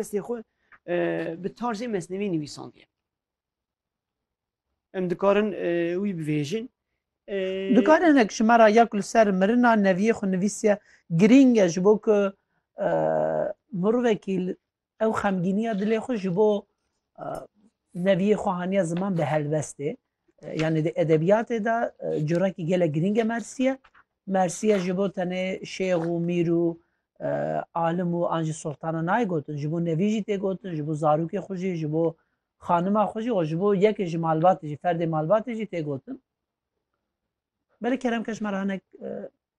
destê xwe bi tarzê mesnevî nivîsandiye. Em dikarin wî bivêjin. Dikarin hinek ji me re ya ku li ser mirina neviyê xwe nivîsiye girîng e ji bo ku mirovekî ew xemgîniya dilê xwe ji bo neviyê xwe haniya ziman bi helbestê. Yanî di edebiyatê de corekî gelek girîng e Mersiye. Mersiye ji bo tenê şêx û mîr û alim û an jî soltana nayê gotin. Ji bo nevî jî tê gotin, ji bo zarokê xwe jî, ji bo xanima xwe jî û ji bo yekê ji malbatê jî, ferdê malbatê jî tê gotin. Belê keremkeş me re hinek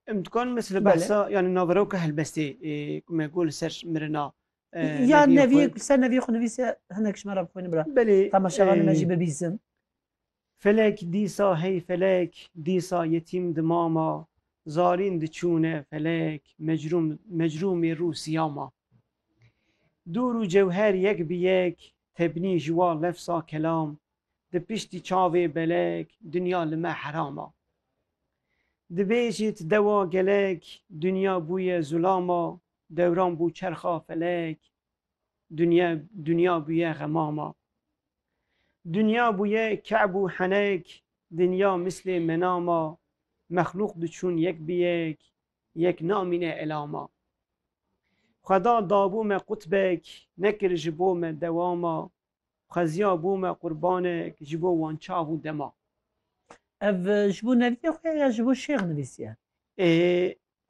Em dikarin mesela behsa yanî naveroka helbestê ku me got li ser mirina ya neviyê ku ser neviyê xwe nivîse hinek ji me re bixwînin bira belê temaşevanê me jî bibîzin. Felek dîsa hey felek dîsa yetîm di mama zarîn diçûne felek mecrûm mecrûmê rû siyama dûr û cewher yek bi yek tebnî ji wa lefsa kelam Di piştî çavê belek dinya li me heram a. Dibêjit dewa gelek dinya bûye zulam a, dewran bû çerxa felek dinya dinya bûye xemam a. Dinya bûye keb û henek dinya mislê menam a, mexlûq diçûn yek bi yek, yek namîne elam a. Xweda dabû me qutbek, nekir ji bo me dewam a, xeziya bûme qurbanek ji bo wan çav û dema. Ev ji bo neviyê xwe ya ji bo şêx nivîsiye?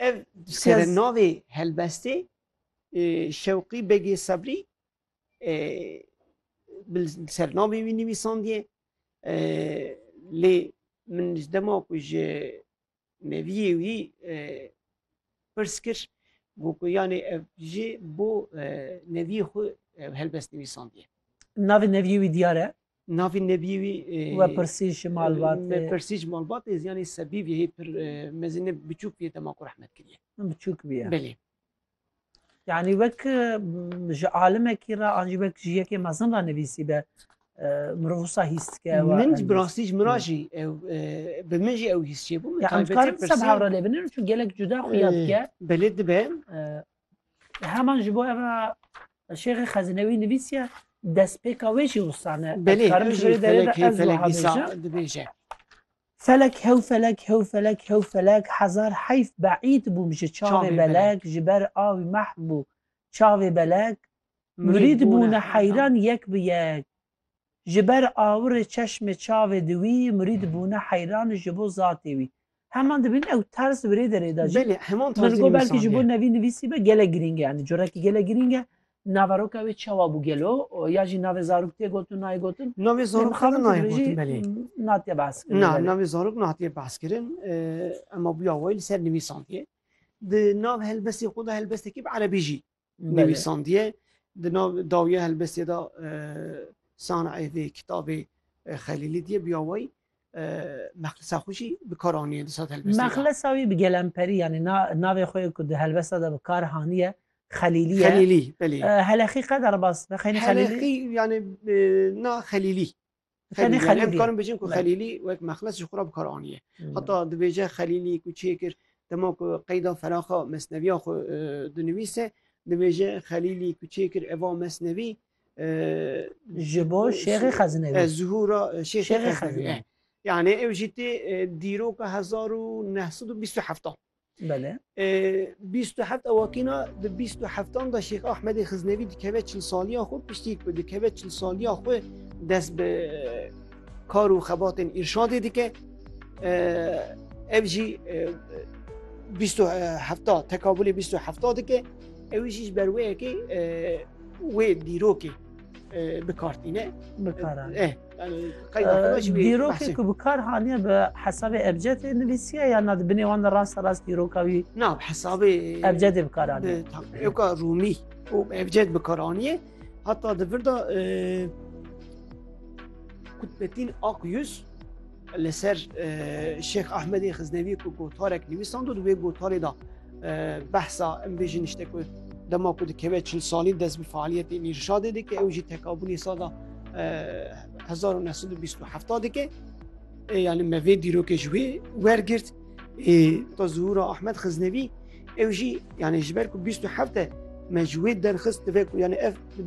Ev serenavê helbestê Şewqî Begê Sebrî serenavê wî nivîsandiye lê min ji dema ku ji Meviyê wî pirs kir got ku yanê ev jî bo neviyê xwe ev helbest nivîsandiye. Navê neviyê wî diyar e? Navê neviyê wî Wepirsî ji malbatê. Wepirsî ji malbatê ziyanê sebî viyê pir mezin e biçûk viyê dema ku rehmet kiriye. Biçûk bûye. Belê. Yani wek ji alimekî re an jî wek ji yekê mezin re nivîsî be mirov wisa hîs dike Min jî bi rastî ji min re jî ew bi min jî ew hîs çê bû dikarim seb hewra lê binin çû gelek cuda xuya dike belê dibe heman ji bo ev şêxê xezinewî nivîsiye destpêka wê jî wisa ne belê dibêje Felek hew felek hew felek hew felek hezar heyf beîd bûm ji çavê belek ji ber awî mahv bû çavê belek murîd bûne heyran yek bi yek ji ber awirê çeşmê çavê di wî murîd bûne heyran ji bo zatê wî heman dibin ew terz virê derê de jî min got belkî ji bo nevî nivîsî be gelek girîng e yani corekî gelek girîng e Naveroka wê çawa bû gelo ya jî navê zarok tê gotin nayê gotin? Navê zarok xwe nayê gotin belê. Natiye behs kirin. Na navê zarok natiye behs kirin ema bûya wê li ser nivîsandiye. Di nav helbestê xwe de helbestekî bi erebî jî nivîsandiye. Di nav dawiya helbestê de sanayê vê kitabê xelîlî diye bûya wê. Mexlisa xwe jî bi kar anîye di sat helbestê de. Mexlisa wî bi gelemperî yanî na navê xwe ku di helbesta de bi kar hanîye Xelîlî ye. Xelîlî belê. Heleqî qe derbas be xeynî Xelîlî? Heleqî yanî na Xelîlî. Xelîlî yanî em dikarin bijin ku Xelîlî wek Mexles ji xwe re bi kar anîye. Heta dibêje Xelîlî ku çê kir dema ku qeyda feraxa mesneviya xwe dinivîse dibêje Xelîlî ku çê kir eva mesnevî Ji bo Şêxê Xezinewî. E, zuhura e, Şêxê Şêxê Xezinewî. Xezinewî. e. Yani ew jî tê e, dîroka 1927. Belê. E, 27 ewakîna di 27an da Şêx Ahmedê Xiznevî dikeve çil saliya xwe piştî ku dikeve çil saliya xwe dest bi e, kar û xebatên îrşadê dike. E, ev jî e, 27 tekabulê 27 dike. Ew jî ji ber wê yekê e, wê dîrokê bikartîne bikar dîrokê ku bikar haniye bi hesabê ebcedê nivîsiye ya na di binê wan de rasta rast dîroka wî na hesabê ebcedê bikaraniye yoka rûmî û ebced bikaraniye heta di vir de kutbetîn ak yüz Li ser Şêx Ahmedê Xiznevî ku gotarek nivîsand û di wê gotarê da behsa em bêjin işte ku dema ku dikeve çil salî dest bi faaliyetê nîrşadê dike ew jî tekabûnê sada 1927 dike yani me vê dîrokê ji wê wergirt ta zuhura Ahmed Xiznevî ew jî yani ji ber ku 27 me ji wê derxist divê ku yani ev